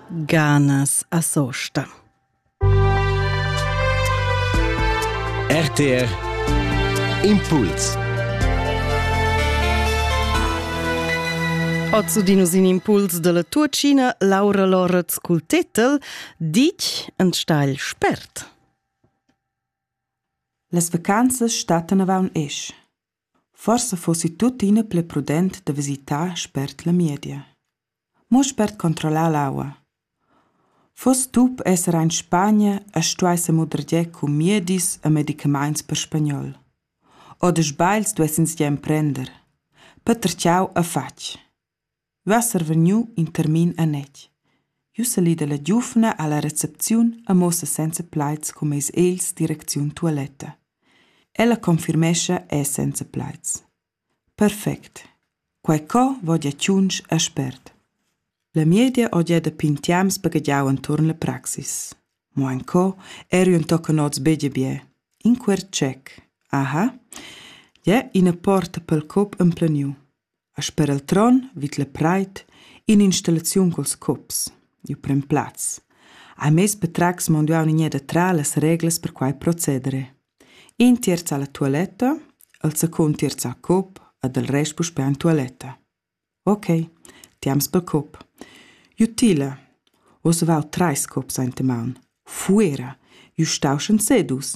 Ganas a sosta. RTR Impuls Ozu dinus in impuls della tua Cina Laura Loretz cul tetel Dich en steil spert. Las vacanzas stattan avaun esch. Forsa fussi tuttina pli prudent da visitar spert la miedia. Mo spert controllar l'aua. Fuss tup esser ein Spagna e stuai semudregier cun miedis e medicamaints per spagnol. Oder sbagls duessens jeu emprender. Peter Ciao e fatg. uossa er vegniu in termin anetg. Jeu salidel la giuvna alla recepziun e muossa senza plaids cum eis els direcziun tualetta. Ella confirmescha è senza plaids. Perfect. Quei co vodia tschunsch a spert. La miedia odia da pintiams baghegiau enturn la praxis. Mo en co eri un tochen oz bege bie. In quer tschec. Aha. Ja ina porta pel cop empleniu. A sper il tron vid la preit in'installaziun culs cups. Il prem plaz. Ha mez patratgs monduau nigneda tra las reglas per quai proceder. In tierz ha la tualetta, il secund tierz ha cup ed il rest puspè en tualetta. Ok, ti ams pel cup. Jutila, oz vau treis cups aint maun. Fuera, ju stau schon sedus.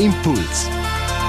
Impuls